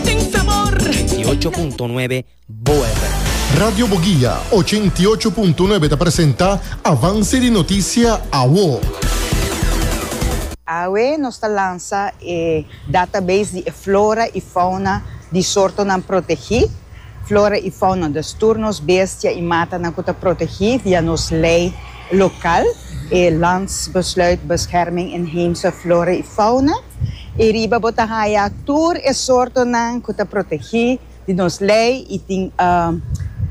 Den sabor. Ochenta y ocho punto nuebe Boa FM. Radio Boguia ochenta y ocho punto nuebe ta presenta Avance di Noticia Awo. Awe nos ta lansa e database di e flora i fauna di sortonan protegí, Flora i Fauna, dus tur nos bestia i matanan ku ta protegí via nos lei. Local, e Landsbesluit Bescherming Inheemse Flora y Fauna, y riba bo ta haya tur e sortonan cu ta protegi di nos ley y tin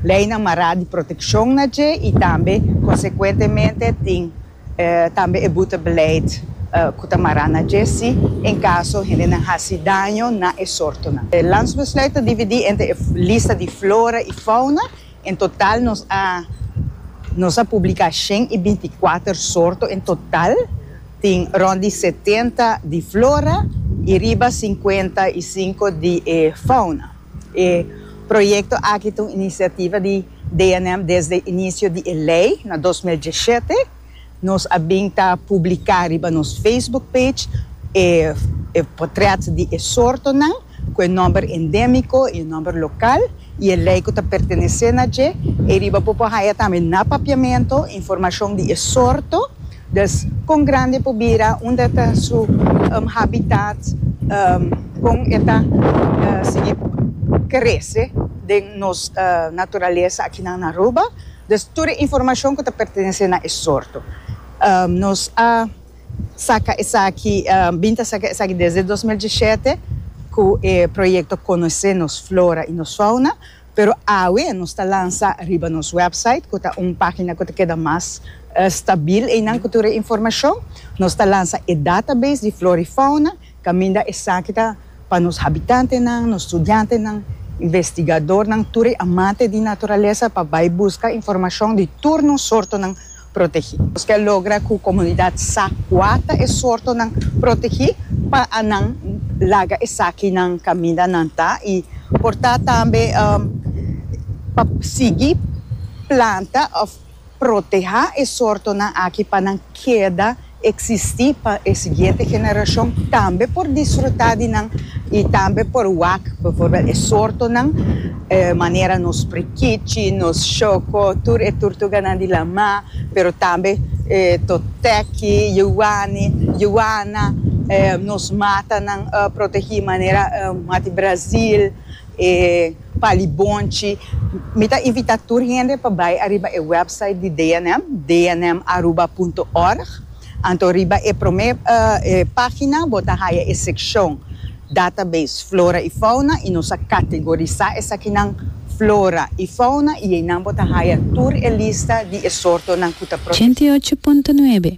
leynan mara di proteccion na dje y tambe consecuentemente tin tambe e boetebeleid cu ta mara na dje si en caso hendenan haci daño na e sortonan. E Landsbesluit ta dividi entre e lista di flora y fauna En total nos a nos a publica shen y binticuater sorto en total tin rond di setenta di flora y riba cincuenta y cinco di e fauna. E proyecto aki ta un iniciativa di DNM desde inicio di e ley na dos mil dieschete. Nos a bin ta publiká riba nos Facebook page e e potrèt di e sortonan ku e nòmber endémiko i e nòmber lokal i e lei ku ta pertenesé na dje. Ei riba bo por haña tambe na papiamentu informashon di e sorto, dus kon grandi e por bira, unda ta su habitat, kon e ta sigui krese den nos naturalesa akinan na Aruba, Des tur e informashon ku ta pertenesé na e sorto. Nos a saka esaki, bin ta saka esaki desde dos mil diesshete ku e proyekto Konosé nos flora i nos fauna, pero awe nos ta lansa riba nos wèpsait ku ta un página ku ta keda mas stabil einan ku tur e informashon. Nos ta lansa e database di flora i fauna. Caminda esaki ta pa nos habitantenan, nos studiantenan, investigadornan, tur e amante di naturalesa pa bay busca informacion di tur nos sortonan protegi. Nos kier logra cu comunidad sa cua ta e sortonan protegi pa a nan laga esakinan caminda nan ta y por ta tambe pa sigui planta of. Protehá e sortonan aki pa nan keda eksistí pa e siguiente generashon tambe por disfrutá di nan i tambe por wak bivorbèl e sortonan manera nos prikichi, nos shoko, tur e turtuganan di lamá, pero tambe toteki, yuwani, yuwana, nos matanan protegí manera Mati Brazil. Pa libonchi, mi ta invita tur hende pa bai ariba e website di DNM, dnmaruba.org. Anto riba e prome e pagina bo ta haya e sekshon Database Flora i Fauna i nos a kategorisá esakinan Flora i Fauna i einan bo ta haya tur e lista di e sortonan ku ta protegé. Ochenta i ocho punto nuebe.